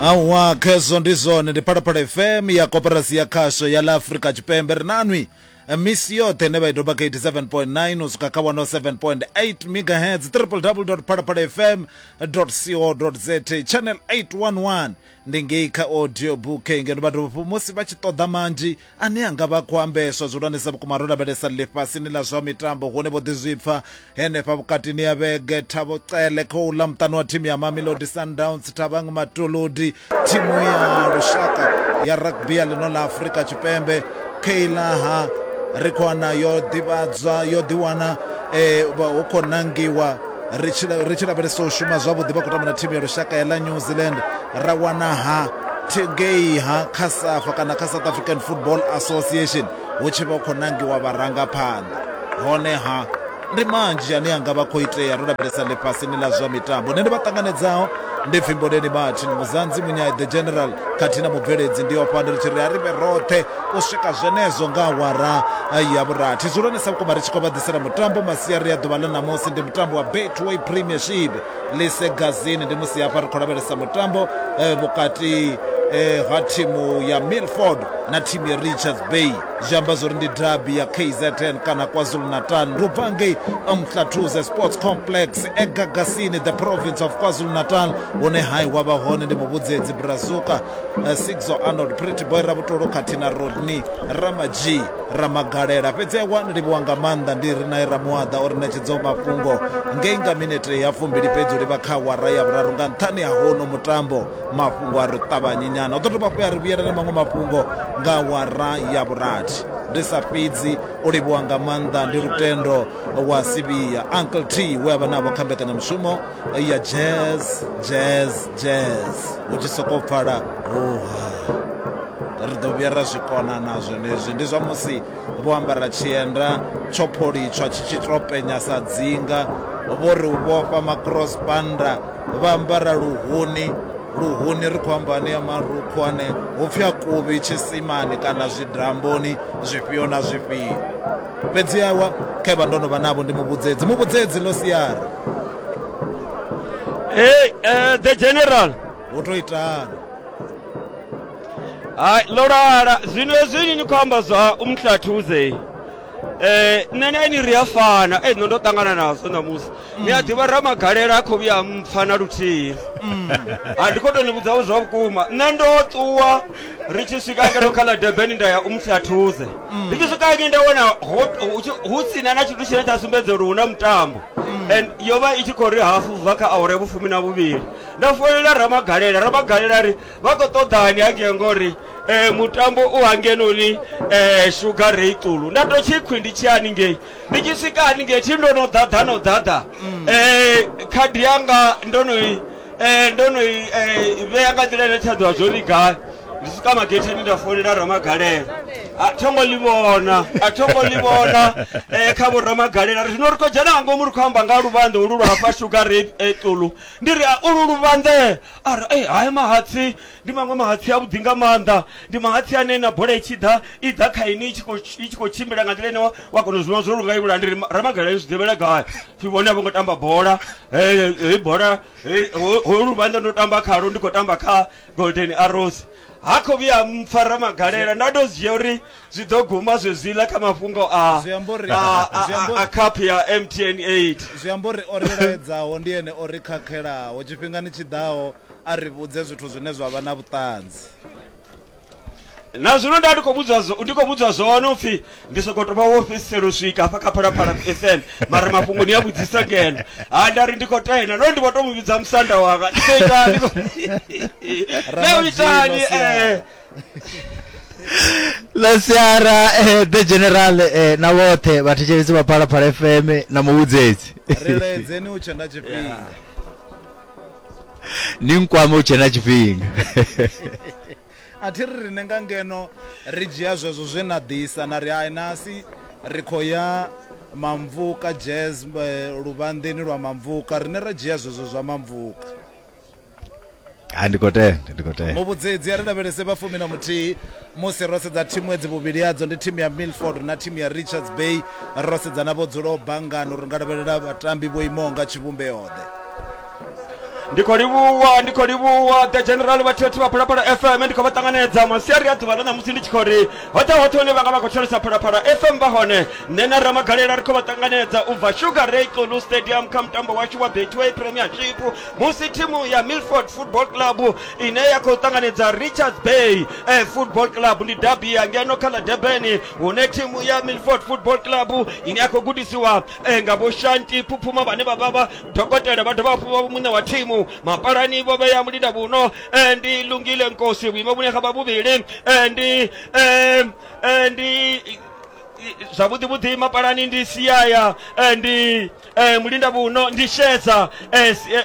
awa khezwo ndi zwone ndi phalaphala fm ya koperasi ya khasho ya la afrika tshipembe ri nanwi misi yoṱhe ne vha i doba kha 87.9 u swika kha 107.8 megahertz www phalaphala fm co za channel 811 ndi ngei kha audio book ngeno vhathu musi vha tshi ṱoḓa manzhi Ane a nga vha a khou ambeswa zwihulwanesa vhukuma ro lavhelesa ḽifhasini ḽa zwa mitambo hune vho ḓizwipfa henefha vhukatini ha vhege Thabo Cele kha u ḽa muṱani wa thimu ya Mamelodi Sundowns Thabang Matolodi thimu ya lushaka ya rugby ya ḽino ḽa Afrika Tshipembe Keilaha Rikhwana yo ḓivhadzwa yo ḓiwana eh, vha- hu khou nangiwa ri tshi la- ri tshi lavhelesa u shuma zwavhuḓi vha khou tamba na thimu ya lushaka ya ḽa new zealand ra wana ha thi- ngei ha kha safa kana kha south african football association hu tshi vha hu khou nangiwa vharangaphanḓa honeha ndi manzhi ane anga vha khou itea ro lavhelesa ḽifhasini ḽa zwa mitambo nṋe ndi vha ṱanganedzaho ndi pfimboleni martin muzanzi munyai the general khathihi na mubveledzi ndi ofha ndi ri tshi ri a ri vhe roṱhe u swika zwenezwo nga awara ya vhurathi dzulwane sa vhukuma ri tshi khou vha ḓisela mutambo masiari ya ḓuvha ḽa ṋamusi ndi mutambo wa betway premiership lise gazini ndi musi hafha ri khou lavhelesa mutambo eh, vhukati eh, ha thimu ya milford na thimu ya richards bay zwi amba zwori ndi dabi ya kzn kana kwazulu natal ri bva ngei mhlathuze sports complex egagasini the province of kwazulu natal hune hai wa vha hone ndi muvhudzedzi brazuka eh, sixo arnold pretty boy ravhutolo khathihi na rodney ramadzhi ramagalela fhedzi awa ni livhiwa nga maanḓa ndi ri nae ramuaḓa o ri ṋetshedzaho mafhungo ngei nga minete ya fumbili fhedzi u livha kha wara ya vhuraru nga nṱhani ha hono mutambo mafhungo a ri ṱavhanyi nyana u ḓo dovha fhu ya ri vhuyela na maṅwe mafhungo nga wara ya vhurathi ndi sa fhedzi u livhiwa nga maanḓa ndi lutendo wa sivhiya uncle t we a vha navho kha mbekanyamushumo ya jazz jazz jazz hu tshi sokou pfala hoha ri ḓo vhuya ra zwi kona na zwenezwi ndi zwa musi vho ambara tshienda tsho pholitshwa tshi tshi tou penya sa dzinga vho ri u vhofha macross banda vha ambara luhuni luhuni ri khou amba ane ya marukhu ane hu pfi a kuvhi tshisimani kana zwidamboni zwifhio na zwifhio fhedzi yawa khevha ndo no vha navho ndi muvhudzedzi muvhudzedzi ḽo siara hey, uh, the general hu to itana hayi ḽo lala zwino hezwini ni khou amba zwa umhlathuze eh nṋe na ini ri a fana ei nṋe ndo ṱangana nazwo ṋamusi ni a ḓivha ramagalela a khou vhuya a mpfa na luthihi a ndi khou tou ni vhudzaho zwa vhukuma nṋe ndo ṱuwa ri tshi swika ngeno kha ḽa debeni nda ya u mufyathuze ndi tshi swika ngi nda wana ho- hu tshi- hu sina na tshithu tshine tsha sumbedza uri hu na mutambo and yo vha i tshi khou ri hafu bva kha awara ya vhufumi na vhuvhili nda folela ramagalela ramagalela ri vha khou ṱoḓani hangei ngori um mutambo u hangenoni um sugar rei ṱulu nda to tshi khwi ndi tshi haningei ndi tshi swika haningei thi ndo no ḓaḓa no ḓaḓa um khadi yanga ndo no i Eh, ndo no i eh, vhea nga nḓila ine tsha ḓivha zwo ri gai ndi swika magetheni nda founela ramagalela a tho ngo ḽi vhona a tho ngo ḽi vhona eh, kha vhoramagalela ri zwino ri khou dzhena nga ngomu ri khou amba nga luvhanḓe ulu lwa hafha shuga re eh, ṱulu ndi ri "Ah, ulu luvhanḓe a ri "Eh, hai mahatsi Ndi maṅwe mahatsi a vhuḓi nga maanḓa, ndi mahatsi ane na bola i tshi ḓa i ḓa kha inwi i tshi khou i tshi khou tshimbila nga nḓila ine wa wa kona u zwi vhona zwo lunga ivhula ndi ri ma- ramagala ni zwi ḓivhela gai pfi vhone a vho ngo tamba bola eh, hei bola hei- ho- ho luvhanḓa ndo tamba khalo ndi khou tamba kha golden arrows ha khou vhuya mpfa ramagalela nda tou dzhia uri zwi ḓo guma zwezwiḽa kha mafhungo a Zwi amba uri- a- a- zwi amba a- a uri- cup ya mtn 8 zwi amba uri o ri laedzaho ndi ene o ri khakhelaho tshifhingani tshi ḓaho A ri vhudze zwithu zwine zwa vha na vhuṱanzi. Na zwino nda ndi khou vhudzwa zwo, ndi khou vhudzwa zwone u pfi ndi sokou tou vha wo fhedzisela u swika hafha kha Phalaphala FM, mara mafhungo ni a vhudzisa ngeno. Ha nda ri ndi khou tenda, nahone ndi vho tou mu vhidza musanda wanga. Ni khou itani? Naa u itani? Eh. ḽa siara eh, the general eh, na vhoṱhe vhathetshelesi vha phalaphala fm na muvhudzedzi Ri ledzeni u tshe na tshifhinga. ni nkwame u tshe na tshifhinga a thi ri rine nga ngeno ri dzhia zwezwo zwe na ḓisa na ri hai nasi ri khou ya mamvuka jazz eh, luvhanḓeni lwa mamvuka rine ra dzhia zwezwo zwa mamvuka ha ndi khou tenda ndi khou tenda muvhudzedzi a ri lavhelese vhafumi na muthihi musi ro sedza thimu edzi vhuvhili hadzo ndi thimu ya milford na thimu ya richards bay ro sedza na vho dzulaho bangano ri nga lavhelela vhatambi vho imaho nga tshivhumbeoḓe ndi khou livhuwa ndi khou livhuwa the general vhathithi vha phalaphala fm ndi khou vha ṱanganedza masiari a ḓuvha ḽa ṋamusi ndi tshi khou ri hoṱhe hoṱhe hune vha nga vha khou tholesa phalaphala fm vha hone nṋe na ramagalela ri khou vha ṱanganedza u bva sugar ray xulu stadium kha mutambo washu wa betway premiership musi thimu ya milford football club ine ya khou ṱanganedza richards bay eh, football club ndi dabi ya ngeno kha ḽa debeni hune thimu ya milford football club ine ya khou gudisiwa eh, nga vho shanti phuphuma vhane vha vha vha dokotela vha dovha hafhu vha muṋe wa thimu mapalani vho vhea mulinda vhuno eh, ndi lungile nkosi vhuimo vhune ha vha vhuvhili eh, ndi eh, eh, ndi zwavhuḓi vhuḓi mapalani ndi siaya eh, ndi eh, mulinda vhuno ndi shedza eh, si- eh,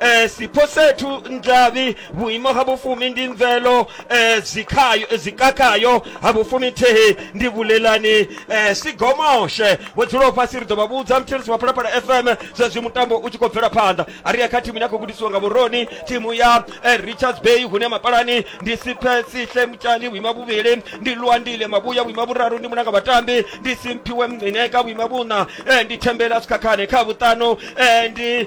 eh, sipho sethu ndlavi vhuimo ha vhufumi ndi mvelo eh, zwikhayo eh, zwikakhayo ha vhufumi thihi ndi vhulelani eh, sigomoshe vho dzulaho fhasi ri ḓo vha vhudza mthirisi wa phalaphala fm zwezwi mutambo u tshi khou bvela phanḓa a ri ya kha thimu ine a khou gudisiwa nga vhuroni thimu ya eh, richards bay hune mapalani ndi siphe sihle mutshani vhuima vhuvhili ndi luandile mavhuya vhuima vhuraru ndi munanga vhatambi ndi simphiwe mncineka vhuima vhuṋa eh, ndi thembela sikhakhane kha vhuṱanu eh, ndi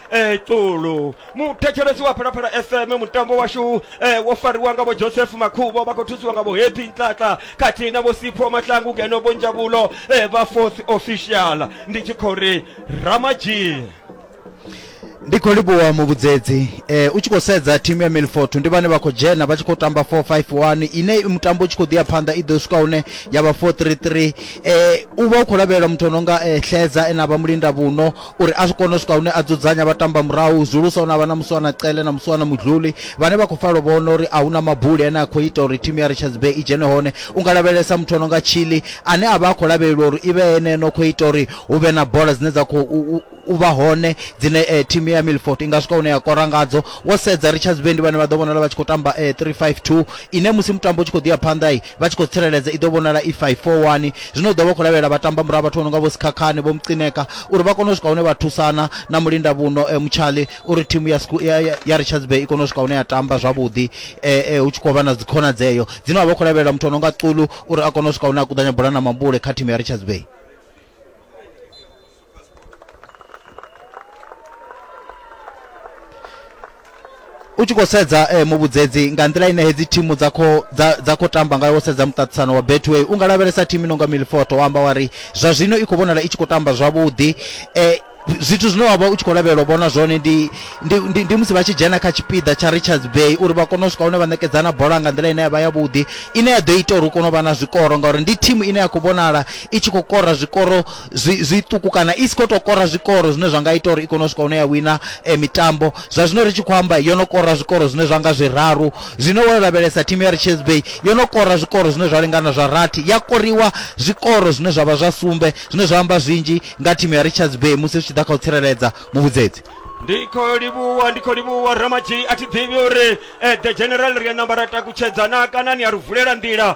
eh, ṱulu muthetshelesi wa phalaphala fm mutambo washu eh, wo fariwa nga vho joseph makhubo vha khou thusiwa nga vho happy ntlaka khathihi na vho sipho mahlangu ngeno vho njabulo eh, vha fourth official ndi tshi khou ri ramadzhie ndi khou livhuwa muvhudzedzi eh, u tshi khou sedza thimu ya milfort ndi vhane vha khou dzhena vha tshi khou tamba 451 ine i mutambo u tshi khou ḓi ya phanḓa i ḓo swika hune ya vha 433 eh, u vha u khou lavhelela muthu o no nga eh, hledza ene a vha mulinda vhuno uri a zwi kone u swika hune a dzudzanya vha tamba murahu zwihulusa hune a vha na muswana cele na muswana mudluli vhane vha khou falo vhona uri a hu na mabuli ane a khou ita uri thimu ya richards bay i dzhene hone u nga lavhelesa muthu o no nga chili ane a vha a khou lavhelelwa uri i vhe ene no khou ita uri hu vhe na bola dzine dza khou u- u- u vha hone dzine eh, thimu ya milford i nga swika hune ya kora ngadzo wo sedza richards bay ndi vhane vha ḓo vhonala vha tshi khou tamba eh, 352 ine musi mutambo u tshi khou ḓi ya phanḓa i vha tshi khou tsireledza i ḓo vhonala i 541 zwino u ḓo vha khou lavhelela vhatamba murahu vhathu vho no nga vho sikhakhane vho mucineka uri vha kone u swika hune vha thusana na mulinda vhuno e, eh, mutshali uri thimu ya, ya, ya, ya richards bay i kone u swika hune ya tamba zwavhuḓi e, e, hu tshi khou vha na dzikhonadzeo dzine vha vha khou lavhelela muthu o no nga culu uri a kone u swika hune a kuḓanya bola na mambule kha thimu ya richards bay u tshi khou sedza eh, muvhudzedzi nga nḓila ine hedzi thimu dza kho dza dza kho tamba ngayo wo sedza muṱaṱisano wa betway u nga lavhelesa thimu i nonga milfoto wa amba wa ri zwa zwino i khou vhonala i tshi khou tamba zwavhuḓi eh, zwithu zwine wavha u tshi khou lavhelela u vhona zwone ndi, ndi, ndi, ndi musi vha tshi dzhena kha tshipiḓa tsha richards bay uri vha kone u swika hune vha ṋekedzana bola nga nḓila ine ya vha yavhuḓi ine ya ḓo ita uri u kone u vha na zwikoro ngauri ndi thimu ine ya khou vhonala i tshi khou kora zwikoro zwiṱuku kana i si khou tou kora zwikoro zwine zwa nga ita uri i kone u swika hune ya wina eh, mitambo zwa zwino ri tshi khou amba yo no kora zwikoro zwine zwa nga zwiraru zwino wo lavhelesa thimu ya richards bay yo no kora zwikoro zwine zwa lingana zwa rathi ya koriwa zwikoro zwine zwa vha zwa sumbe zwine zwa amba zwinzhi nga thimu ya richards bay musi zwi tshi ḓa kha u tsireledza muvhudzedzi ndi khou livhuwa ndi khou livhuwa ramadzhi a thi ḓivhi uri eh, the general ri a namba ra takutshedzana kana ni a ri vulela nḓila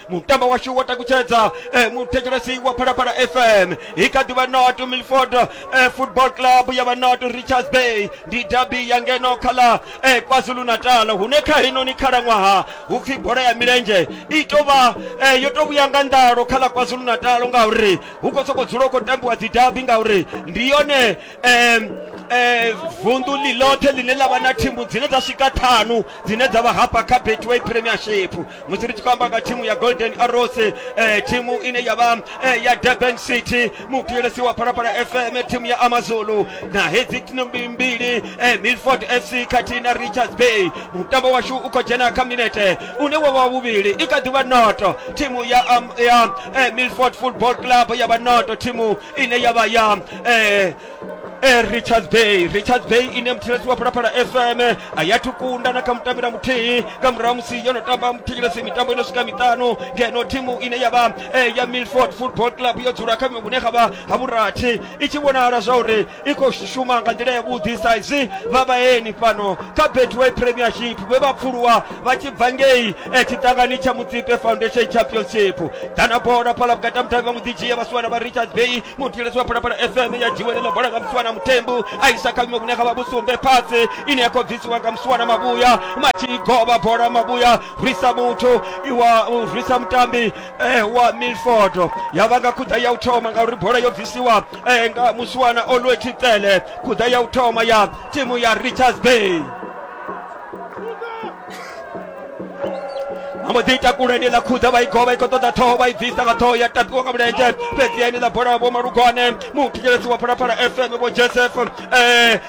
mutambo washu wa takutshedza eh, muthetshelesi wa phalaphala fm i kha ḓivha not milford eh, football club ya vha not richards bay ndi dabi ya ngeno kha ḽa eh, kwazulu natal hune kha heinoni khalaṅwaha hu pfi bola ya milenzhe i tou vha eh, yo tou vhuya nga nḓalo kha ḽa kwazulu natal ngauri hu khou sokou dzula u khou tambiwa dzi dabi ngauri ndi yone eh, eh, vunḓu ḽi ḽoṱhe ḽine ḽa vha na thimu dzine dza swika ṱhanu dzine dza vha hafha kha betway premiership musi ri tshi khou amba nga thimu ya golden arrows eh, thimu ine ya vha eh, ya durban city muthuyelesi wa phalaphala fm thimu ya amazulu na hedzi tnombi mbili eh, milford fc khathihi na richards bay mutambo washu u khou dzhena kha minete une wa vha vhuvhili i kha ḓivha noto thimu ya, um, ya eh, milford football club ya vha noto thimu ine ya vha ya eh, e richards bay richards bay ine muthetshelesi wa phalaphala fm a ya thukunda na kha mutambira muthihi nga murahu musi yo no tamba muthetshelesi mitambo ino swika miṱanu ngeno thimu ine ya vha e ya milford football club yo dzula kha vhune kha vha ha vhurathi i tshi vhonala zwa uri i khou shuma nga nḓila yavhuḓi sa izwi vha vhaeni fhano kha betway premiership vhe vha pfuluwa vha tshi bva ngei e tshiṱangani tsha mutsipe foundation championship dana bola phala vhukati ha muthavi vha muḓidzhia vhasiwana vha richards bay mutiletsi wa phalaphala fm ya dziwelela bola nga msuwana mutembu aisa kavhimo vhune kha vha vhusumbe phatsi ine ya khou bvisiwa nga msuwana mabuya matshigoba bola mabuya rwisa muthu iwa rwisa mutambi eh, wa milford ya vha nga khuḓa ya u thoma ngauri bola yo bvisiwa eh, nga musuwana olwe thitele khuḓa ya u thoma ya timu ya richards bay vha mbo ḓi ita kule ni ḽa khudza vha i govha i khou ṱoḓa ṱhoho vha i bvisa nga ṱhoho ya tapiwa nga mulenzhe fhedzi ya ni ḽa bola vho malugwane muthetshelesi wa phalaphala fm vho joseph um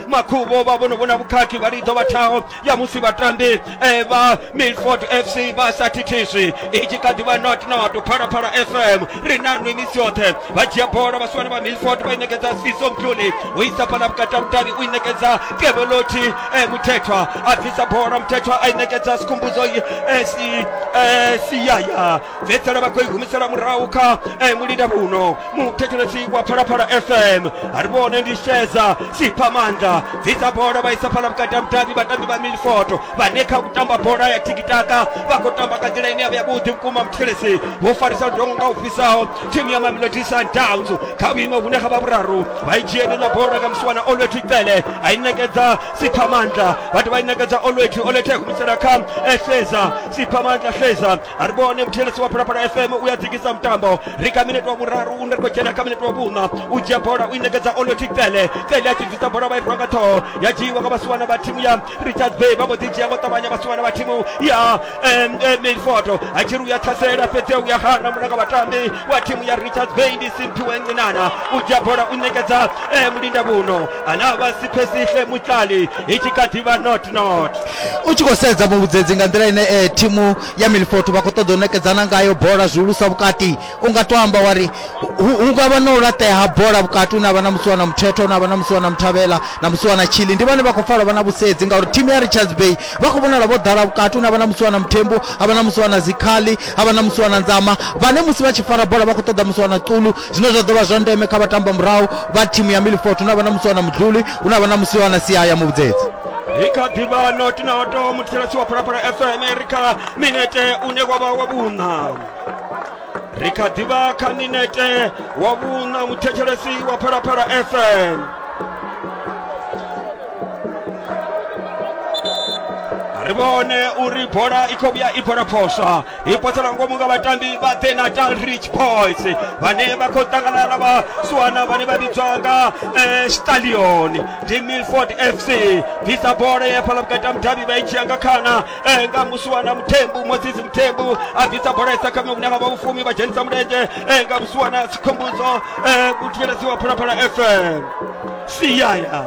makhuvho vha vhono vhona vhukhakhi vha lidzo vha thaho ya musi vhatambi um vha milford fc vha sa thithiswi i tshi kha ḓi vha not not phalaphala fm ri na nwi misi yoṱhe vha dzhia bola vhasiwana vha milford vha i ṋekedza siso mdluli u isa fhala vhukati ha vhudavhi u i ṋekedza keveloti eh, muthethwa a bvisa bola muthethwa a i ṋekedza sikhumbudzo eh, si, eh, siyaya fhedzisela vha khou i humisela murahu kha eh, mulinda vhuno muthetshelesi wa phalaphala fm a ri vhone ndi sheza sipha maanḓa bvisa bola vha isa fhala vhukati ha vhudavhi vhatambi vha milford vhane kha u tamba bola ya tikitaka vha khou tamba nga nḓila ine ya vha yavhuḓi vhukuma muthetshelesi vho farisa ludongo nga u fhisaho thimu ya mamelodi sundowns kha vhuimo vhune kha vha vhuraru vha i dzhieni na bola nga musiwana olwethu icele a i nekedza siphamandla vhathu vha i nekedza olwethu olwethu a humisela kha eseza siphamandla seza a ri vhone muthelesi wa phalaphala fm u ya dzikisa mutambo ri kha minete wa vhuraru u ri khou dzhena kha minete wa vhuṋa u dzhia bola u i nekedza olwethu icele icele a tshi bvisa bola vha i rwa nga ṱhoho ya dzhiiwa nga vhasiwana vha thimu ya richard bay vha mbo ḓi dzhia ngo ṱavhanya vhasiwana vha thimu ya em, em, milford a tshi ri uya ṱhasela fhedzi uya hana mulanga vhatambi wa thimu ya richard bay ndi simphiwe ncinana u dzhia bola u ṋekedza eh, mulinda vhuno ana vha siphesihle mutlali i tshi kha ḓivha not not u tshi khou sedza muvhudzedzi nga nḓila ine eh, thimu ya milford vha khou ṱoḓa u nekedzana ngayo bola zwihulusa vhukati u nga to amba wa ri hu hu nga vha na u laṱea ha bola vhukati hune avha na musi wana muthetho hune avha na musi wana muthavhela na musi wana tshili ndi vhane vha khou pfala vha na vhusedzi ngauri thimu ya richards bay vha khou vhonala vho ḓala vhukati hune avha na musi wana muthembu avha na musi wana zikhali avha na musi wana nzama vhane musi vha tshi fara bola vha khou ṱoḓa musi wana ṱulu zwine zwa ḓo vha zwa ndeme kha vhatamba murahu vha thimu ya milfort hune avha na musi wana mudluli hune avha na musi wana sia ya muvhudzedzi i kha ḓivha notinoto mutshilasi wa phalaphala fm ri kha minete une wa vha wa vhuṋa ri kha ḓivha kha minete wa vhuṋa muthetshelesi wa phalaphala fm ri vhone uri bola i khou vhuya i bola phoswa i potsela ngomu nga vhatambi vha the natal rich boys vhane vha khou ṱangana na vhasuwana vhane vha vhidzwa nga eh, stallion ndi milford fc bvisa bola ya fhala vhukati ha mudavhi vha i dzhia nga khana eh, nga musiwana muthembu mosisi muthembu a bvisa bola isa kha miṅwe vha vhufumi vha dzhenisa mulenzhe eh, nga musiwana sikhombudzo eh, u thivheledziwa phalaphala fm siyaya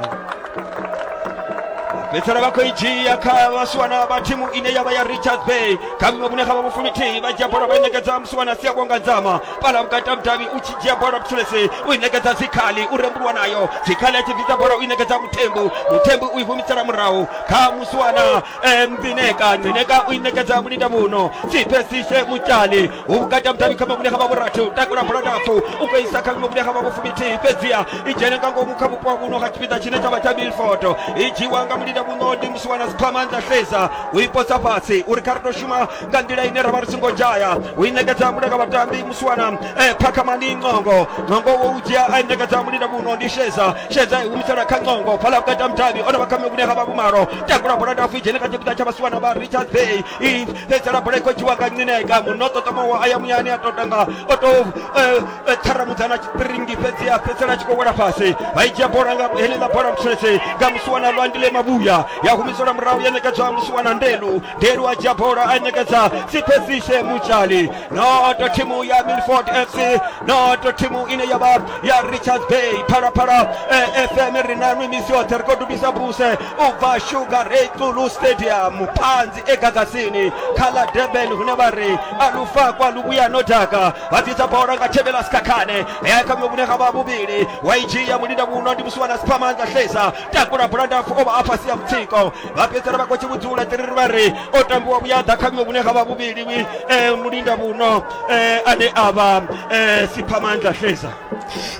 fhedzisela vha khou i dzhia kha vhasiwana vha thimu ine ya vha ya richards bay kha miṅwe vhune kha vha vhufumi thihi vha dzhia bola vha i ṋekedza musiwana sia kwanga dzama fhala vhukati ha mudavhi u tshi dzhia bola vhutshulesi u i ṋekedza dzikhali u rembulwa nayo dzikhali a tshi bvisa bola u i ṋekedza muthembu muthembu u i humisela murahu kha musiwana Eh, mbineka mbineka u inekedza mulinda muno sipesise mutshali hu vhukati ha mudavhi kha mamuṋe ha vhavhurathi u takula bola ndapfu u khou isa kha mamuṋe ha vhavhufuminthihi fhedziha i dzhene nga ngomu kha vhupo ha muno ha tshipiḓa tshine tsha vha tsha milford i dzhiwa nga mulinda muno ndi musiwana siphama nda sedza u i posa fhasi uri kha ri tou shuma nga nḓila ine ra vha ri songo dzhaya u i ṋekedza muda kha vhatambi musiwana eh, phakhamani ncongo ncongo wo u dzhia a i ṋekedza mulinda muno ndi sheza sheza i humisela kha ncongo phala u kata mudavhi o no vha khame vhune ha vha vhumalo takula bola ndafu i dzhene kha tshipiḓa tsha vhasiwana vha richard bay i fhedzela bola i khou dzhiwa nga ncineka muno ṱoṱomowo a ya muyani a totanga o to eh, eh, ṱharamudza na tshipiringi fhedzi a fhedzela a tshi khou wela fhasi vha i dzhia bola nga heneḽa bola mutshese nga musiwana lwandile mavhuya ya humiselwa murahu ya ṋekedzwa musiwana ndelu delwa dzhia bola a ṋekedza sipesishe mutshali noto thimu ya milford fc noto thimu ine ya vha ya richards bay phalaphala eh, fm ri na nwi misi yoṱhe ri khou dubisa buse u bva sugar ray tsulu stadium phanzi egagasini kha ḽa durban hune vha ri a lufakwa luvhuya no daka vha dzisa bola nga thevhela sikhakhane ya kha vhune ga vha vhuvhili wa i dzhia mulinda muno ndi musiwana siphamanza hlesa takula bulandafu o vha a fhasi ya mutsiko vha fhedzisela vha khou tshi vhudzula tiriri vha ri o tambiwa vhuya ḓa kha vhuṅwe vhune ha vha vhuvhili eh, mulinda vhuno eh, ane a vha eh, siphamandla hleza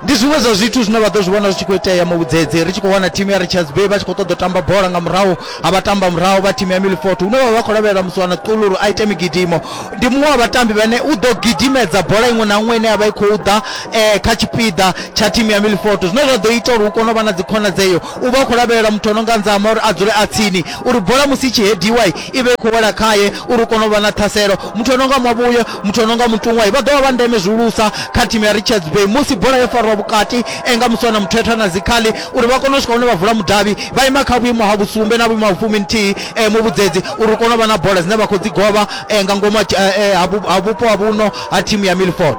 ndi zwiṅwe zwa zwithu zwine vha ḓo zwi vhona zwi tshi khou itea mavhudzedze ri tshi khou wana thimu ya richards bay vha tshi khou ṱoḓa u tamba bola nga murahu a vha tamba murahu vha thimu ya milfort hune vha vha khou lavhelela musiwana ṱululu a ite migidimo ndi muṅwe wa vhatambi vhane u ḓo gidimedza bola iṅwe na iṅwe ine ya vha i khou ḓa um kha tshipiḓa tsha thimu ya milfort zwine zwa ḓo ita uri hu kone u vha na dzikhonadzeo U vha a khou lavhelela muthu o no nga Nzama uri a dzule a tsini uri bola musi i tshi hediwa i vhe i khou wela khae uri hu kone u vha na ṱhaselo. Muthu o no nga Mavhuye, muthu o no nga Mutuṅwa vha ḓo vha vha ndeme zwihulusa kha thimu ya Richards Bay musi bola yo fariwa vhukati e nga Muswana Muthethwa na Zikhali uri vha kone u swika hune vha vula mudavhi vha ima kha vhuimo ha vhusumbe na vhuimo ha vhufuminthihi muvhudzedzi uri hu kone u vha na bola dzine vha khou dzi govha nga ngomu ha vhupo ha vhuno ha thimu ya Milford.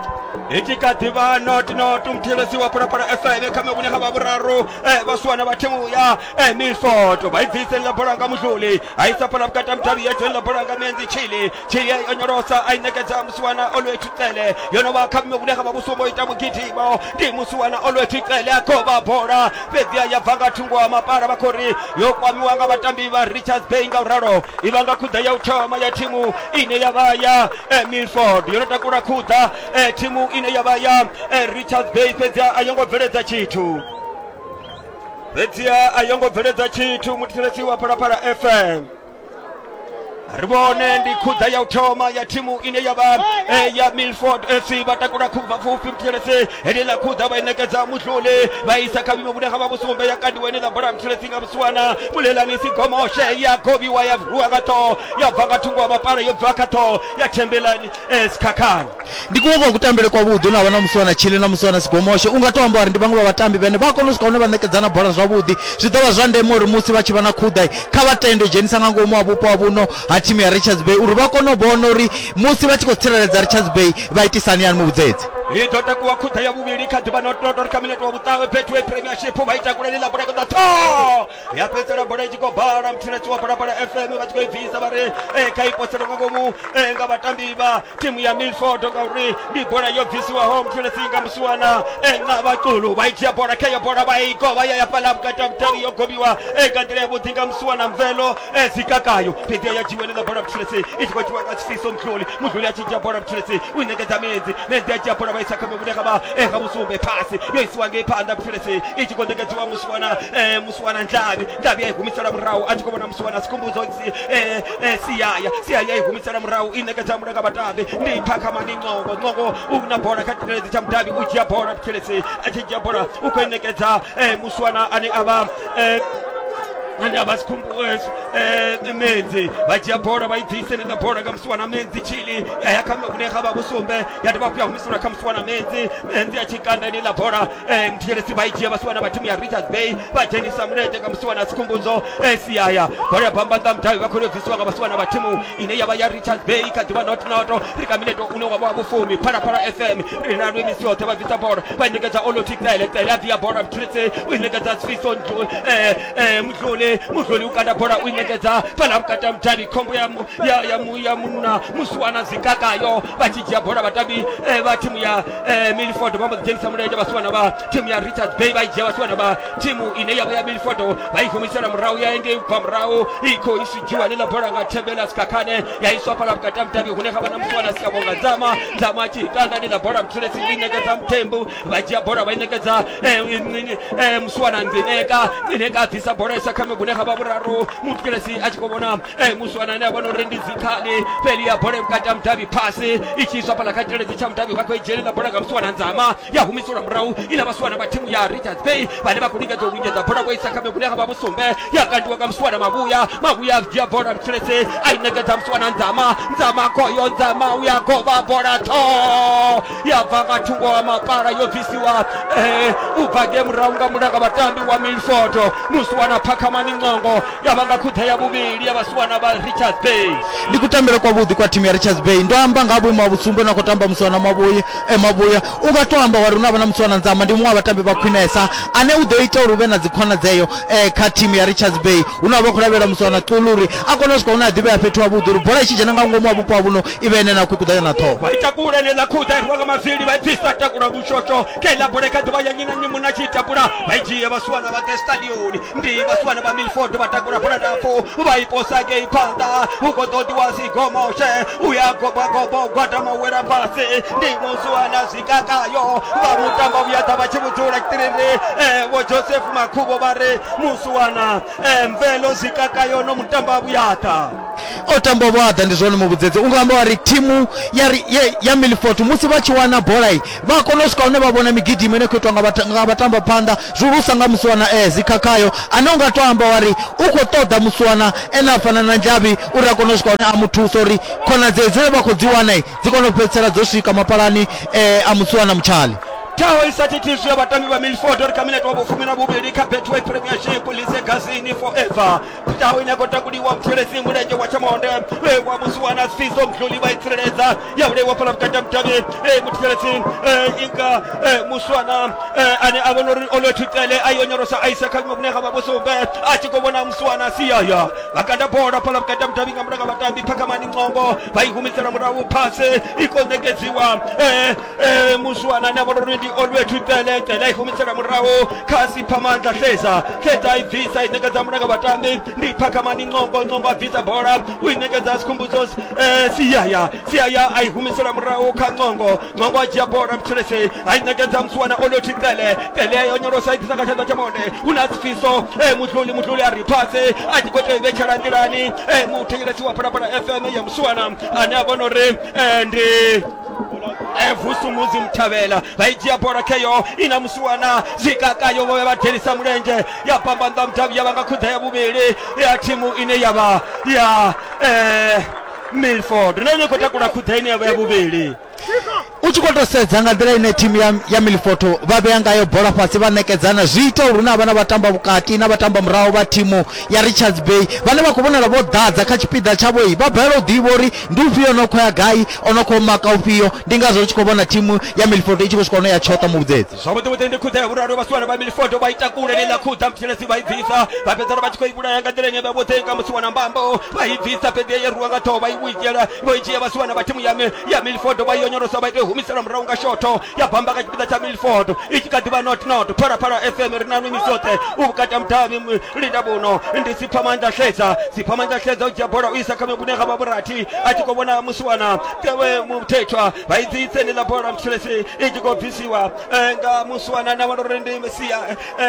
Itshi kha ḓivha not not mthilesi wa phalaphala FM kha mevhune ha vha vhuraru eh, vha suwana vha thimu ya eh, minsoto vha i bviseni ḽa bola nga muhluli a isa fhala vhukati ha mudavhi ya dzoni ḽa bola nga mienzi chili chili ya i onyolosa a i ṋekedza musiwana olwethu tsele yo no vha kha mme vhune ha vha vhusumbo ita mugidimo ndi musiwana olwethu tsele a khou vha bola fhedzi a ya bva nga thungo ha mapala vha khou ri yo kwamiwa nga vhatambi vha richards bay nga u ralo i vha nga khuḓa ya u thoma ya thimu ine ya vha ya eh, milford yo no takula khuḓa eh, thimu ine ya vha ya eh, richards bay fhedziha a yo ngo bveledza tshithu fhedziha a yo ngo bveledza tshithu muthetshelesi wa phalaphala fm ri vhone ndi khudza ya u thoma ya thimu ine ya vha eh, ya milford fc vha takula khubva pfufhi muthelesi heneḽa khudza vha i ṋekedza muhluli vha isa kha vhimo vhune ha vha vhusumbe ya kandiwa ine ḽa bola muthelesi nga vhusiwana mulelani si gomoshe ya gobiwa ya rua nga ṱhoho ya bva nga thungo wa mapala yo bva kha ṱhoho ya thembelani Ee, Sikhakhane. Ndi kuṅwe kwa kutambele kwavhuḓi u na vha na musi vha na Chile na musi vha na Sigomoshe. U nga tou amba uri ndi vhaṅwe vha vhatambi vhane vha a kona u swika hune vha ṋekedzana bola zwavhuḓi. Zwi ḓo vha zwa ndeme uri musi vha tshi vha na khuḓa, kha vha tende u dzhenisa nga ngomu ha vhupo ha vhuno ha thimu ya Richards Bay uri vha kone u vhona uri musi vha tshi khou tsireledza Richards Bay vha itisa hani hani mu vhudzedze. I ḓo takuwa khuḓa ya vhuvhili kha ḓuvha na u tou ri kha minete wa vhuṱawe Betway Premiership vha i takulele ḽa bulege ḓa ṱhoho. ya fhedzisela bola i tshi khou bala muthiletshi wa phalaphala fm vha tshi khou i bvisa vha ri eh, kha i posele nga ngomu eh, nga vhatambi vha thimu ya milford ngauri ndi bola yo bvisiwaho muthiletshi nga musiwana eh, nga vhaculu vha i dzhia bola kha iyo bola vha i govha ya ya fhaḽa vhukati ha mutavhi yo gobiwa eh, nga nḓila yavhuḓi nga musiwana mvelo eh, dzikakayo fhedzi ya dzhiwa ḽiḽa bola muthiletshi i tshi khou dzhiwa nga tshifiso mudluli mudluli a tshi dzhia bola muthiletshi u i ṋekedza medzi medzi a dzhia bola vha isa kha mivhune kha vha eh, kha musumbe phasi yo isiwa ngei phanḓa phelesi i tshi khou ṋekedziwa musiwana eh, musiwana ndlavhi ndlavhi ya i humisela murahu a tshi khou vhona musiwana sikhumbudzo si eh, eh, siyaya siyaya i humisela murahu i ṋekedza mulanga vhatambi ndi pha kha mani ncongo ncongo u na bola kha tshireledzi tsha mudavhi u dzhia bola phelesi a tshi dzhia bola u khou i ṋekedza eh, musiwana ane a vha eh, ane a vha sikhumbuezi menzi vha dzhia bola vha i bvise nenda bola nga musiwana menzi chili ya ya kha vhune ga vha vhusumbe ya dovha hafhu ya humisula kha musi wana medzi medzi a tshi kanda ine ḽa bola eh, mthetshelesi vha i dzhia vha si wana vha thimu ya richards bay vha dzhenisa mulenzhe nga musi wana sikhumbudzo eh, siaya bola ya bambanda mudavhi vha khou yo bvisiwa nga vha si wana vha thimu ine ya vha ya richards bay kha ḓivha not noto ri kha mineto une wa vha wa vhufumi phalaphala fm ri na lwemisi yoṱhe vha bvisa bola vha i ṋekedza oloti tsele tsele a bvia bola mthetshelesi u i ṋekedza sifiso eh, eh, muhlole muhloli u kanda bola u i ṋekedza fhala vhukati ha mudavhi khombo ya mu- ya- ya mu- ya munna musi wana zikakayo vha tshi dzhia bola vhatambi eh, vha thimu ya eh, milford vha mbo ḓi dzhenisa mulenzhe vhasiwana vha thimu ya richards bay vha i dzhia vhasiwana vha thimu ine yavha ya milford vha i humisela murahu ya engei ubva murahu i khou isidzhiwa ḽiḽa bola nga thembela sikakhane ya iswa fhala vhukati ha mudavhi hune ha vha na musiwana siavonga dzama dzama a tshi itanga ḽiḽa bola muthelesi i ṋekedza muthembu vha dzhia bola vha i ṋekedza eh, eh, musiwana nzineka nzineka a bvisa bola isa kha mibune ha vha vhuraru mutkelesi a tshi khou vhona eh, musiwana ane a vhona uri ndi dzikhani feli ya bola vhukati ha mudavhi phasi i tshi iswa fhala kha tshiledzi tsha mudavhi vha khou i dzhelela bola nga musiwana nzama ya humiselwa murahu ina vhasiwana vha thimu ya richards bay vhane vha khou lingedza u lingedza bola vho isa kha mibune ha vha vhusumbe ya kandiwa nga musiwana mavhuya mavhuya a dzhia bola muthelesi a i ṋekedza musiwana nzama nzama khoyo nzama uya govha bola tho ya bva nga thungo wa mapala yo bvisiwa eh, u bva nge murahu nga mulanga vhatambi wa milfoto musiwana phakhamani ncongo ya vha nga khuḓa ya vhuvhili ya vhasiwana vha richards bay ndi kutambele kwavhuḓi kwa thimu ya richards bay ndo amba nga ha vhuimo ha vhutsumbo na khou tamba musiwana mavhuya e mavhuya u nga to amba wari hu na vha na musiwana nzama ndi muṅwe wa vhatambi vha khwinesa ane u ḓo ita uri hu vhe na dzikhonadzeo eh, kha thimu ya richards bay hu na vha khou lavhelela musiwana xulu uri a kone u swika hune a ḓivhea fhethu havhuḓi uri bola i tshi dzhena nga ngomu wa vhupo ha vhuno i vhe ene na khuḓa ya na ṱhoho vha ita kule ḽe ḽa khuḓa irwa nga mavili vha bvisa takula vhushosho ke ḽa bule kha ḓuvha ya nyi na nyi muna tshi takula vha i dzhia vhasiwana vha ḓe stadioni ndi vhasiwana vha milford vha takula bola ndapfu vha i posa ngei phanḓa hu khou ḓo ḓiwa zigomoshe u ya gobogobo gwada mawela fhasi ndi musuwana zwikakayo vha mutamba vhuya ḓa vha tshi vhudzula tshitiriri vho joseph makhuvho vha ri musuwana e mvelo zwikakayo no mutamba vhuyaḓa o tamba vhuaḓa ndi zwone muvhudzedzi u nga amba wa ri thimu ya ri- ye- ya milfort musi vha tshi wana bola i vha a kona u swika hune vha vhona migidimo ine khou itwa nga vhata- nga vhatamba phanḓa zwihulusa nga musiwana e zikhakhayo ane u nga to amba wa ri u khou ṱoḓa musiwana ene a fana na nzhavhi uri a kone u swika hune a mu thusa uri khonadzeo dzine vha khou dzi wana i dzi kone u fhedzisela dzo swika mapalani eh, a musiwana mutshali ṱhaho i sa thithiswi ya vhatambi vha milford ri kha minete wa vhufumi na vhuvhili kha betway premiership lise gazini forever ṱhaho ine ya khou takuliwa muthelesi mulenzhe wa tshamonde e wa musiwa na siso mdluli vha i tsireledza ya vhulaiwa fhala vhukati ha mudavhi e muthelesi e inga e muswana e ane a vhona uri o lo thutele a yo nyorosa a isa kha vhuṅwe vhune ha vha vhusumbe a tshi khou vhona muswana siyaya vhakanda bola fhala vhukati ha mudavhi nga mulanga vhatambi phakhamani ncongo vha i humisela murahu phase i khou ṋekedziwa e Eh, muswana na vhona uri ndi olwethu tsele tsele i humisela murahu kha sipha mandla hleza hleza i bvisa i ṋekedza mulanga vhatambi ndi phakhamani ncongo ncongo a bvisa bola u i ṋekedza sikhumbudzo eh, siyaya siyaya a i humisela murahu kha ncongo ncongo a dzhia bola mtshelese a i ṋekedza muswana olwethu tsele tsele yo nyolosa i ḓisa kha tshanḓa tsha mone hu na sifiso eh, mutluli mutluli a ri phase a tshi khou tea i vhetshela nḓilani eh, muthetshelesi wa phalaphala fm ya muswana ane a vhona uri eh, ndi e vusumudzi muthavhela vha i dzhia bola kheyo i na musiwana zwikakayo vho vhe vha delisa mulenzhe ya pambanḓa mudavhi ya vha nga khuḓa ya vhuvhili ya thimu ine ya vha ya eh, milford na ine i khou takula khuḓa ine ya vha ya vhuvhili u tshi khou tou sedza nga nḓila ine thimu ya, ya milfoto vha vhea ngayo bola fhasi vha ṋekedzana zwi ita uri hu na vhana vha tamba vhukati na vha tamba murahu vha thimu ya richards bay vhane vha khou vhonala vho ḓadza kha tshipiḓa tshavho-i vha balelwa u ḓivha uri Ndi ufhio o no khou ya gai? O no khou maka ufhio? Ndi ngazwo ri tshi khou vhona thimu ya Milford i tshi khou swika hune ya tshoṱa muvhudzedzi. Zwavhuḓi-vhuḓi ndi khuḓa ya vhuraru vhasiwana vha Milford vha ita kule na iḽa khuḓa Muthelezi vha i bvisa vha fhedzana vha tshi khou i vhulaya nga nḓila ine vha vhoṱhe nga musi wana mbambo vha i bvisa fhedzi ya yeruwa nga ṱhoho vha i vhuidzela vho i dzhia vhasiwana vha thimu ya mi ya Milford vha i onyolosa vha ita i humisela murahu nga shotho ya bamba kha tshipiḓa tsha Milford i tshi kha ḓi vha not not Phalaphala FM ri na nwi misi yoṱhe u vhukati ha mudavhi linda vhuno ndi sipfamanḓa xedza sipfamanḓa xedza u dzhia bola u isa kha vhune ga vha vhurathi a tshi khou vhona musiwana muthethwa vha i dzi tsenela bola muthelesi i tshi khou bvisiwa eh, nga musiwana na vhana uri ndi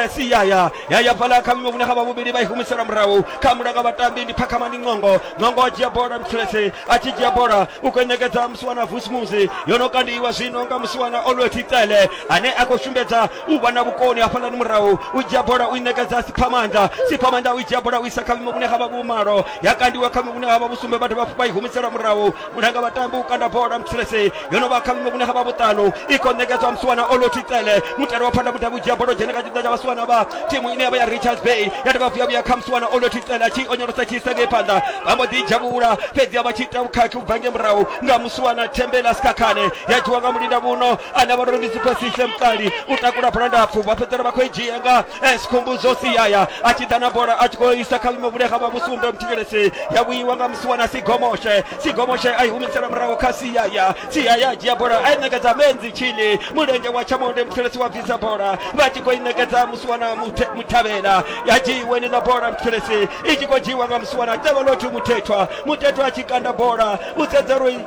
siyaya eh, ya ya fhala kha vhune ga vha vhuvhili vha i humisela murahu kha mulanga vhatambi ndi phakhama ndi ṅongo ṅongo a dzhia bola muthelesi a tshi dzhia bola u khou ṋekedza musiwana vusmuzi yo no kandiwa zwino nga musiwana olweti tsele ane a khou sumbedza u vha na vhukoni hafhaḽani murahu u dzhia bola u i ṋekedza siphamanda siphamanda u i dzhia bola u isa kha vhuimo vhune ha vha vhumalo ya kandiwa kha vhuimo vhune ha vha vhusumbe vha dovha vha i humisela murahu mulanga vhatambi u kanda bola mthulese yo no vha kha vhuimo vhune ha vha vhuṱanu i khou ṋekedzwa musiwana oloti tsele mutale wa phanḓa mudavhi u dzhia bola u dzhena kha tshipiḓa tsha vhasiwana vha thimu ine ya vha ya richards bay ya dovha vhuya vhuya kha musiwana oloti tsele a tshi onyolosa tshi isa ngei phanḓa vha mbo ḓi dzhavhula fhedzi a vha tshi ita vhukhakhi u bva ngei murahu nga suwana thembela sikhakhane ya dzhiwa nga mulinda muno ane vha ndo ndi siphasise mukali u takula bola ndapfu vha fhedzela vha khou i dzhia nga eh, sikhumbudzo siyaya a tshi ḓa na bola a tshi khou isa kha vhuimo vhune ha vha vhusumbe muthikelesi ya vhuiwa nga musiwana sigomoshe sigomoshe a i humisela murahu kha siyaya siyaya a dzhia bola a i ṋekedza menzi tshini mulenzhe wa tshamonde muthikelesi wa bvisa bola vha tshi khou i ṋekedza musiwana Muthe- muthavhela ya dzhiiwe ni ḽa bola muthikelesi i tshi khou dzhiiwa nga musiwana tevhelothu muthethwa muthethwa a tshi kanda bola u sedza uri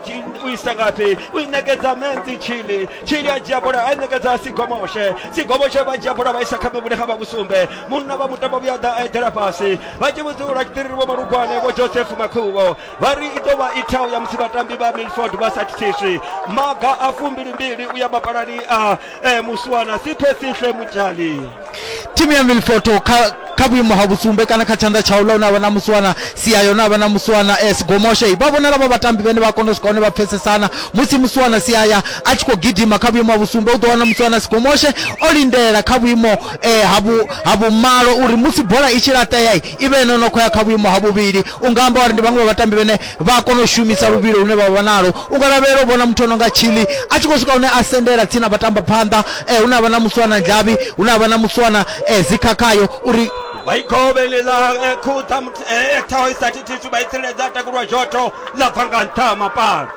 u isa ngafhi u i ṋekedza menzi tshili tshili a dzhia bola a i ṋekedza sigomoshe sigomoshe vha dzhia bola vha isa kha mivhule kha vha vhusumbe munna vha mutambo vhuya ḓa a eḓela fhasi vha tshi vhudza uri tshiṱiriri vho malugwane vho joseph makhuvho vha ri i ḓo vha i thao ya musi vhatambi vha milford vha sa thithiswi maga a fumbilimbili u ya mapalani a eh muswana siphe sihle mutshali thimu ya milfoto kha kha vhuimo ha vhusumbe kana kha tshanḓa tsha uḽa hune avha na muswana sia yone avha na muswana eh, sigomoshe vha vhonala vha vhatambi vhene vha kona u swika hone vha pfesesana musi muswana siaya a tshi khou gidima kha vhuimo ha vhusumbe u ḓo wana muswana sigomoshe o lindela kha vhuimo eh, ha vhu- ha vhumalo uri musi bola i tshi laṱea i vhe ene no khou ya kha vhuimo ha vhuvhili u nga amba uri ndi vhaṅwe vha vhatambi vhene vha a kona u shumisa luvhilo lune vha vha nalo u nga lavhelela u vhona muthu ono nga chili a tshi khou swika hune a sendela tsini na vhatamba phanḓa eh, hune a vha na muswana ndzhavhi hune a vha na muswana eh, zikhakhayo uri vhaikovhelela eh, khuṱa mut- eh, eh, ṱhaho i sa thithiswi vha i tsireledza a takulwa zhoto ḽa bva nga nṱha ha mapala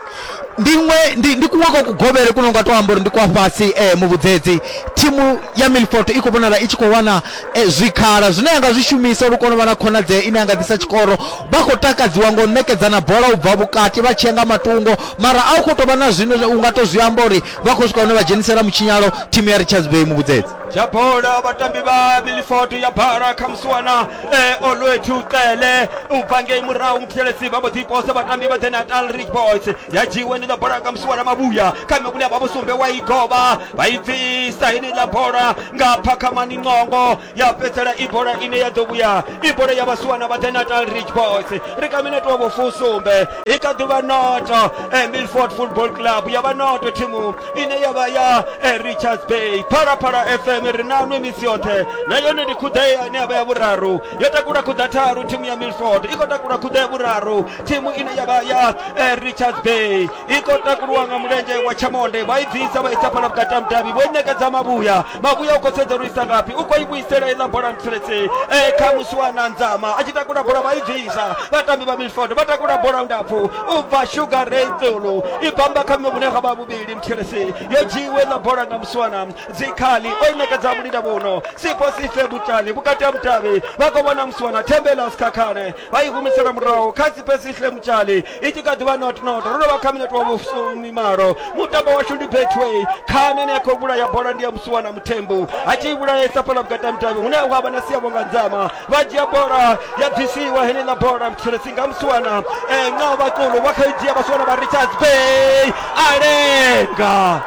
ndiṅwe ndi, ndi kuṅwe kwa kugovhele kuno nga to amba uri ndi kwa fhasi eh, muvhudzedzi thimu ya milfort i khou vhonala i tshi khou wana E, zwikhala zwine a nga zwi shumisa uri u kone u vha na khonadzeo ine a nga ḓisa tshikoro vha khou takadziwa ngo ṋekedzana bola u bva vhukati vha tshiya nga matungo mara a u khou tou vha na zwine zwa- u nga tou zwi amba uri vha khou swika hune vha dzhenisela mutshinyalo thimu ya richards bay muvhudzedzi ya bola vhatambi vha milford ya bara kha musiwana e, olwethu cele u bva ngei murahu muthelesi vha mbo ḓi posa vhatambi vha the natal rich boys ya dzhiwe ndi ḽa bola kha musiwana mavhuya kha mivhuli ya vhavhusumbe wa i govha vha i bvisa heneiḽa bola nga phakhamani ncongo ya fhedzisela i bola ine ya ḓo vhuya i bola ya vhasiwana vha the natal ridge boys ri kha minete wa vhofusumbe i kha ḓuvha noto eh, milford football club ya vha noto thimu ine ya vha ya eh, richards bay phalaphala fm ri nanwe misi yoṱhe na yone ndi khuḓea ine ya vha ya vhuraru yo takula khuḓa tharu thimu ya milford i khou takula khuḓa ya vhuraru thimu ine ya vha ya eh, richards bay i khou takuliwa nga mulenzhe wa tshamonde vha i bvisa vha isa fhala vhukati ha mudavhi vho i ṋekedza mavhuya mavhuya u khou sedza uri isa ngafhi u khou i vhuisela iḽa bola ntsiretse e kha musi wa na nzama a tshi takula bola vha i bvisa vhatambi vha milford vha takula bola ndapfu u bva sugar ray tsulu i bamba kha vhune ha vha vhuvhili ntsiretse yo dzhiiwe iḽa bola nga musiwana dzikhali o i ṋekedza mulinda vhuno sifho sife butali vhukati ha mudavhi vha khou vhona musiwana thembela sikhakhane vha i humisela murahu kha sife sihle mutshali i tshi kha ḓivha not not ro novha kha minete wa vhusumi malo mutambo washu ndi betway khani ene ya khou vhulaya bola ndi ya musuwa na muthembu a tshi i vhulaesa fhala vhukati ha mutavhi hune ha vha na siyavho nga nzama vha dzhia bola ya bvisiwa heneiḽa bola mthiresi nga musuwana e, nga vhakulu vha kha i dzhia vhasuwana vha richards bay a lenga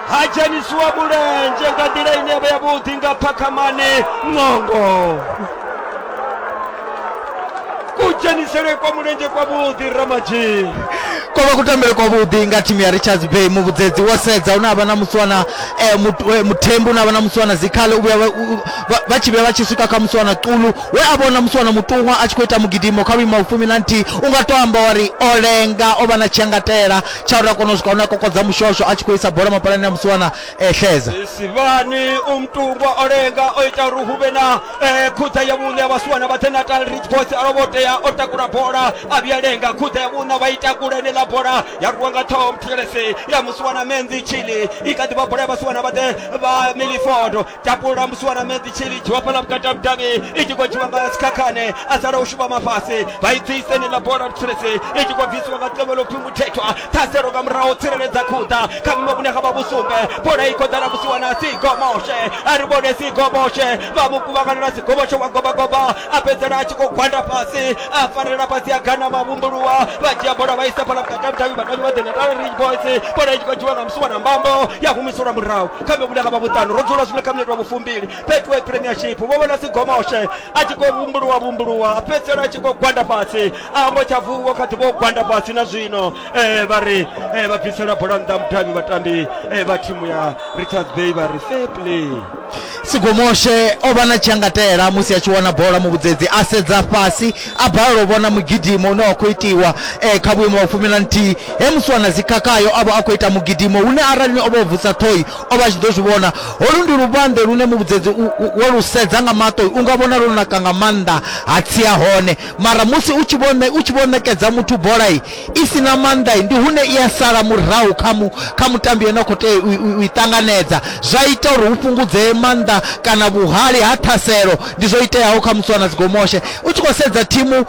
ha dzhenisiwa mulenzhe nga nḓila ine ya vha yavhuḓi nga phakhamane ṅongo kudzhenisele kwa mulenzhe kwa vhuḓi ramadzhii ko vha kutambele kwa vhuḓi nga thimu ya richards bay muvhudzedzi wo sedza une avha na musiwana eh, mut- eh, muthembu une avha na musiwana zikhale u vhuya vha- u- vha- vha tshi vhuya vha tshi swika kha musiwana qulu we a vhona musiwana mutuṅwa a tshi khou ita mugidimo kha vhuima vhufumi na nthihi u nga to amba wari o lenga o vha na tshiangatela tsha uri a kone u swika hune a kokodza mushosho a tshi khou isa bola mapalani ya musiwana ehleza sivhani u mutungwa o lenga o ita uri hu vhe na eh, khutha ya vhuṋe ya vhasiwana vha thenatal rich boys a lovho tea o takula bola a vhuya lenga khutha ya vhuṋa vha ita kule ene ḽa bola ya rwiwa nga ṱhoho muthelese ya musiwana menzi chili i kha ḓi vha bola ya vhasiwana vha ḓe vha milifodo tapula musiwana menzi chili dzhiwa fhala vhukati ha vhudavhi i tshi khou dzhiwa nga sikhakhane a sala u shuvha mafhasi vha i tsisa ene ḽa bola muthelese i tshi khou bvisiwa nga ṱevhelo pfhi muthethwa ṱhaselo nga murahu u tsireledza khuḓa kha vhume vhune ha vha vhusumbe bola i khou ḓala musiwa na sigoboshe a ri vhone sigoboshe vha mu kuvhanganela sigoboshe wa gobagoba a fhedzela a tshi khou gwanda fhasi a farelela fhasi a gana vhavumbuluwa vha dzhia bola vha isa fhala vhukati ha vhudavhi vhatambi vha ḓenatala ridge boys bola i tshi khou dzhiwa nga musiwa na mbambo ya humiselwa murahu kha vhume vhune ha vha vhuṱanu ro dzula zwino kha minete wa vhufumbili betway premiership vho vhona sigomoshe a tshi khou vumbuluwa vumbuluwa a fhedzela a tshi khou gwanda fhasi ambo tsha vuwa kha ḓi vho gwanda fhasi na zwino eh, vha ri eh, vha bvisela bola nnḓa mudavhi vhatambi eh, vha thimu ya richards bay vha ri fair play sigomoshe o vha na tshiangatela musi a tshi wana bola muvhudzedzi a sedza fhasi a balelwa u vhona mugidimo une wa khou itiwa eh, kha vhuimo wa fumi na nthihi he musi wana dzikhakhayo a vha a khou ita mugidimo hune arali o vha o vusa ṱhoyi o vha a tshi ḓo zwi vhona holu ndi luvhanḓe lune muvhudzedzi u- u- wo lu sedza nga maṱoi u nga vhona lwo naka nga maanḓa ha tsia hone mara musi u tshi vho ne- u tshi vho ṋekedza muthu bola i i si na maanḓa i ndi hune i a sala murahu kha mu kha mutambi ane a khou tea u- u- u i ṱanganedza zwa ita uri hu fhungudzee maanḓa kana vhuhali ha ṱhaselo ndi zwo iteaho kha musiwana dzigomoshe u tshi khou sedza thimu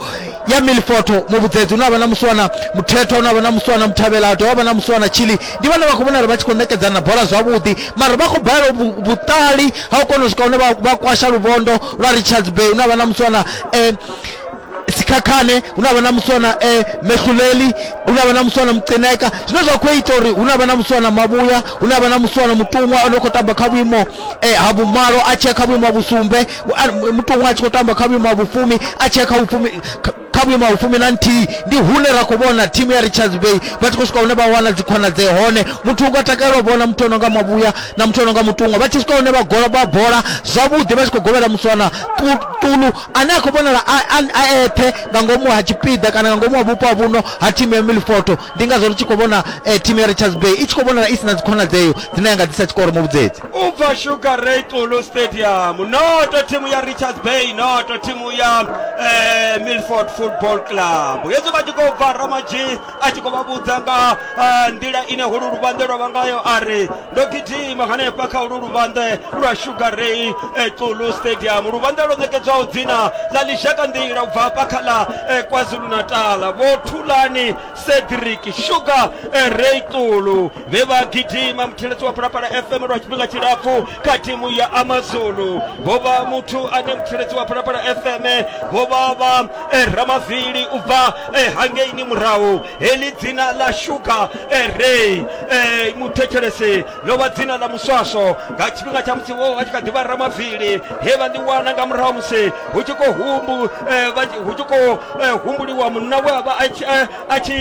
ya milfoto muvhudzedzi une avha na musiwana muthetho une avha na musiwana muthavhela ha dovha vha na musiwana chili ndi vhane vha khou vhonala vha tshi khou ṋekedzana bola zwavhuḓi mara vha khou balelwa vhu- vhuṱali ha u kona u swika hune vha vha kwasha luvhondo lwa richards bay une avha na musiwana eh sikhakhane hu na vha na muswana eh mehuleli hu na vha na muswana mucineka zwine zwa khou ita uri hu na vha na muswana mavhuya hu na vha na muswana mutuṅwa o no khou tamba kha vhuimo eh ha vhumalo a tshia kha vhuimo ha vhusumbe a- mutuṅwa a tshi khou tamba kha vhuimo ha vhufumi a tshia kha vhufumi kha- kha vhuimo ha vhufumi na nthihi ndi hune ra khou vhona thimu ya richards bay vha tshi khou swika hune vha wana dzikhonadzee hone muthu u nga takalela u vhona muthu o no nga mavhuya na muthu o no nga mutuṅwa vha tshi swika hune vha gola vha bola zwavhuḓi vha tshi khou govhela muswana ṱu- Ṱulu, ane a khou vhonala a, a, a eṱhe nga ngomu ha tshipiḓa kana nga ngomu ha vhupo ha vhuno ha thimu ya Milford. Ndi ngazwo ri tshi khou vhona eh, thimu ya Richards Bay i tshi khou vhonala i si na dzikhonadzeo dzine ya nga ḓisa tshikoro mu vhudzedzi. u bva sugar ray tulu stadium noto thimu ya richards bay noto thimu ya eh, milford football club hezwi vha tshi khou bva ramadzhi a tshi khou vha vhudza nga ah, nḓila ine holu luvhanḓe lwa vha ngayo a ri ndo gidima hanefha kha holu luvhanḓe lwa sugar ray eh, tsulu stadium luvhanḓe lwo ṋekedzwaho dzina ḽa ḽishaka nḓila u bva hafha kha ḽa eh, kwazulu-natala vho thulani cedric sugar eh, ray tsulu vhe vha gidima muthiledzi wa phalaphala fm lwa tshifhinga tshilapfu kha thimu ya amazulu vho vha muthu ane muthiledzi wa phalaphala fm vho vha vha eh, ramavili u bva eh, hangeini murahu heḽi dzina ḽa shuga eh, rey eh, muthetshelesi ḽo vha dzina ḽa muswaswo nga tshifhinga tsha musi vho vha tshi kha ḓivha ramavili he vha ḽi wana nga murahu musi hu tshi khou humbu eh, vha tshi- hu tshi khou eh, humbuliwa munna we a vha a tshi- eh, a tshi